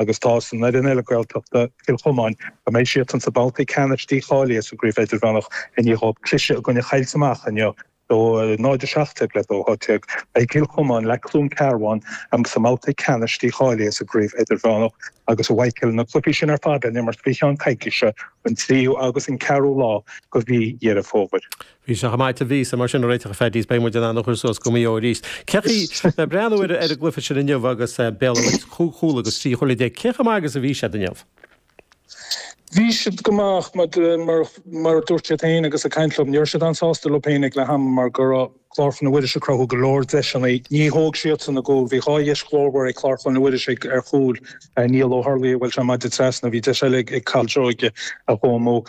agus tá san fhoireann eile Gaeltachta, Cill Chomáin, go mbeidh siadsan sa babhta ceannais dícháilithe sa gCraobh Idirmheánach i ndiaidh dhóibh cliseadh i gcoinne Choillte Mach inniu, 0-17 le 2-18. Beidh Cill Chomáin le Cluain Cearbhán sa mbabhta ceannais dícháilithe sa gCraobh Idirmheánach agus a bhfaighidh na cluichí sin ar fad le n-imirt faoi cheann coicíse, an 3ú agus an 4ú lá de mhí Dheireadh Fómhair. Bhí sé chomh maith a bhí sé, mar sin, a réiteach, a Phaddy, is, beidh muid in ann a chur suas go Maigh Eo arís. Cé chaoi, le breathnú ar an gcluiche sin inniu agus Béal an Mhuirthead cúig chúl agus trí chúile déag, cé chomh maith agus a bhí siad inniu? Bhí siad go maith, mar a dúirt siad féin agus ag caint liom, ní raibh siad an-sásta leo féin ag leath ama mar go raibh Clár Chlainne Mhuiris ag cruthú go leor deiseanna. Ní thóg siadsan a gcúl. Bhí dhá dheis ghlórmhar ag Clár Chlainne Mhuiris ar chúil Niall Ó hUrlaigh a bhuail sé maide trasna. Bhí deis eile ag Cathal Seoige a chuaigh amú.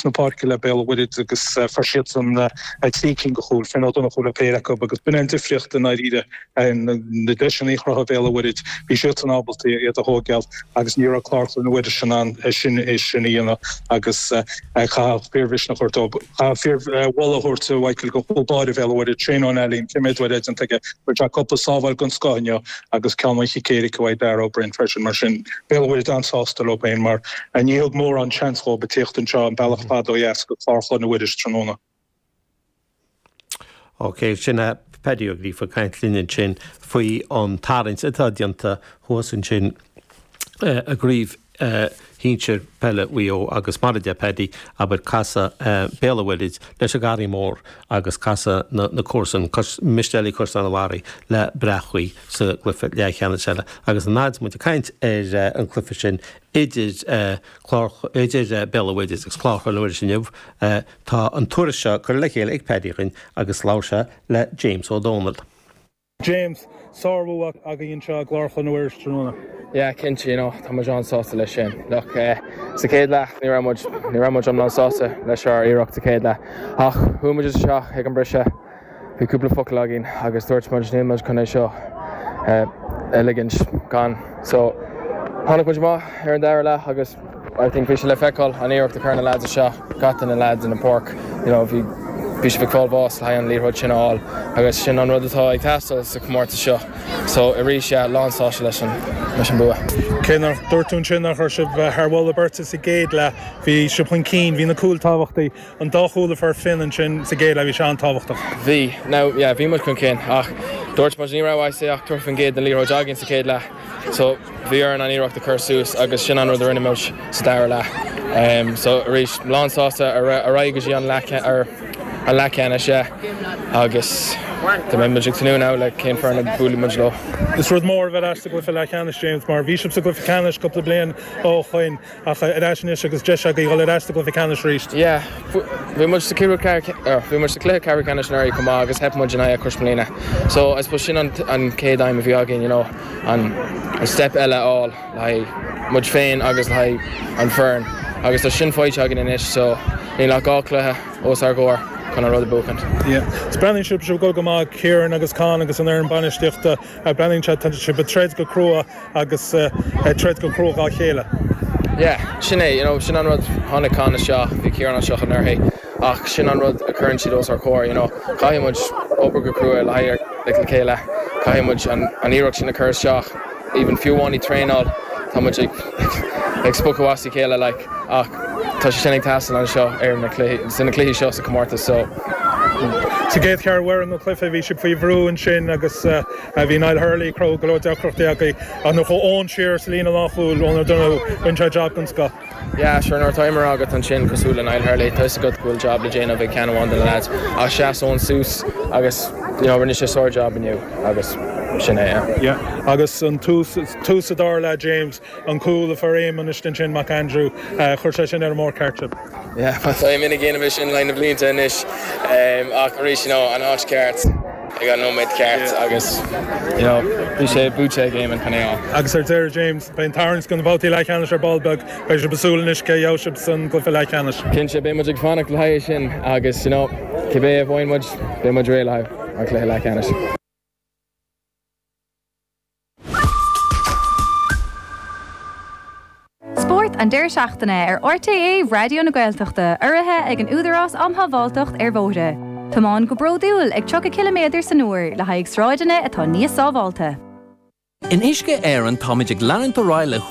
na páirce le Béal an Mhuirthead agus fuair siadsan trí cinn de chúil, Finn Ó Donnchú le péire acu agus b'in an difríocht i ndáiríre. Na deiseanna a chruthaigh Béal an Mhuirthead, bhí siadsan ábalta iad a thógáil agus ní raibh Clár Chlainne Mhuiris in ann é sin a dhéanamh agus chaithfeadh fíor-mhisneach a thabhairt dóibh, chaithfeadh fíor-mholadh a thabhairt do chúl báire Bhéal an Mhuirthead, Shane Nallen, an céimí a d'oir déanta aige, chuir sé cúpla sábháil den scoth inniu agus ceann ón gcic éirice uaidh, Darragh O'Brien, freisin. Mar sin, Béal an Mhuirthead an-sásta leo féin, mar ní thug mórán seans dhóibh a theacht anseo an bealach fada ó dheas go Clár Chlainne Mhuiris tráthnóna. OK, sin é Paddy Ó Gríofa ag caint linn ansin faoi an tarraingt atá déanta thuas ansin, i gCraobh Shinsir Peile Mhaigh Eo agus mar a deir Paddy, abair, casfaidh Béal an Mhuirthid leis an nGarraí Mór agus casfaidh na comharsain, Mistéalaigh Chaisleán an Bharraigh, le Bréachmhaigh sa gcluiche leathcheannais eile. Agus an fhaid muid ag caint ar an gcluiche sin idir Béal an Mhuirthid agus Clár Chlainne Mhuiris inniu, tá an tuairisc seo curtha le chéile ag Paddy againn agus labhair sé le James Ó Dónaill. James, sárbhua agaibh anseo i gClár Chlainne Mhuiris tráthnóna. Yeah, cinnte, you know, tá muid an-sásta leis sin. Look, eh, sa chéad leath ní raibh muid, ní raibh muid iomlán sásta leis ár iarracht sa chéad leath. Ach, chuaigh muid isteach ag an briseadh, bhí cúpla focal againn agus dúirt muid níl muid chun é seo a ligint gan. So, tháinig muid amach ar an dara leath agus. I think bhí sé le feiceáil an iarracht a chuir na leaids isteach, na leaids ar an páirc, you know, bhí bhí siad ag fáil bháis le haghaidh an liathróid sin a fháil agus sin an rud atá ag teastáil sa chomórtas seo, so arís yeah, lánsásta leis an leis an bua. Cé mar a dúirt tú ansin nach raibh sibh thar mholadh beirte sa gcéad leath, bhí sibh chun cinn, bhí na cúil tábhachtaí. an dá chúl a fuair Finn ansin sa gcéad leath, bhí sé an-tábhachtach. Bhí. Now, yeah, bhí muid chun cinn ach dúirt muid ní raibh I'd say ach thirty faoin gcéad den liathróid againn sa chéad leath so bhí orainn an iarracht a chur suas agus sin an rud a rinne muid sa dara leath. Em so arís lánsásta ar ar aghaidh go dtí an leath ce er an leath ceannais yeah agus tá beidh muid ag tnúth now le cén foireann a mbuailfidh muid leo. Is rud mór a bheith ar ais sa gcluiche leathcheannais James mar bhí sibh sa gcluiche ceannais cúpla bliain ó shoin. Ach ar ais anois agus deis agaí dhul ar ais sa gcluiche ceannais arís. Yeah, bhí muid sa cluiche ceathrú ceannais anuraidh chomh maith agus theip muid in aghaidh Crossmolina. So I suppose sin an chéad aidhm a bhí againn, you know, an step eile a fháil le haghaidh muid féin agus le haghaidh an fhoireann agus tá sin faighte againn anois so níl ach dhá cluiche os ár gcomhair chun an rud a bhuachaint. Yeah, so breathnaíonn sibh go go maith, Kieran agus Con agus an fhoireann bainistíochta, breathnaíonn siad, tá sibh ag troid go crua. agus ag troid go cruaidh dhá chéile. Yeah, sin é, you know, sin an rud, tháinig Conn isteach, bhí Ciarán anseo anuraidh ach sin an rud a chuireann siad os ár gcomhair, you know, caithfidh muid obair go cruaidh le haghaidh, like, le chéile, caithfidh muid an, an iarracht sin a chur isteach, even fiú amháin i dtraenáil, tá muid ag, like, ag spochadh as a chéile, like, ach tá sé sin ag teastáil anseo ar na cluichí, sna cluichí seo sa chomórtas so. Sa gcéad cheathrú ar an, an cluiche, bhí sibh faoi bhrú ansin agus. Bhí Niall Hurley ag cruthú go leor deacrachtaí ach ach nuair a chuaigh Eoin siar sa líne lánchúil Eoin O'Donoghue, rinne sé jab den scoth. Yeah, sure, nuair atá imreoir agat ansin cosúil le Niall Hurley, tá 'fhios agat go bhfuil jab le déanamh ag ceann amháin de na lads ach sheas Eoin suas agus you know rinne sé sár-jab inniu agus sin é. Yeah, yeah. Agus ag tús an dara leath James. an cúl a fuair Éamonn ansin Éamonn McAndrew. Chuir sé sibh ar an mbóthar ceart. Tá Éamonn ag déanamh é sin le na blianta anois ach arís you know an áit cheart ag an nóiméad ceart agus you know bhí sé buaite ag Éamonn chun é a Agus ar deireadh, James, beidh an tarraingt do na babhtaí leathcheannais ar ball beag. Beidh sibh ag súil anois cé a gheobhaidh sibh san gcluiche leathcheannais. Cinnte, beidh muid ag fanacht le haghaidh sin agus you know cibé a bhfaigheann muid, beidh muid réidh le haghaidh an cluiche leathcheannais. Spórt an deireadh seachtaine ar RTÉ Raidió na Gaeltachta urraithe ag an Údarás um Shábháilteacht ar Bhóithre. Tiomáin go bródúil ag 30 ciliméadar san uair le haghaidh sráideanna atá níos sábháilte. In Uisce Éireann táimid ag leanúint ar aghaidh le.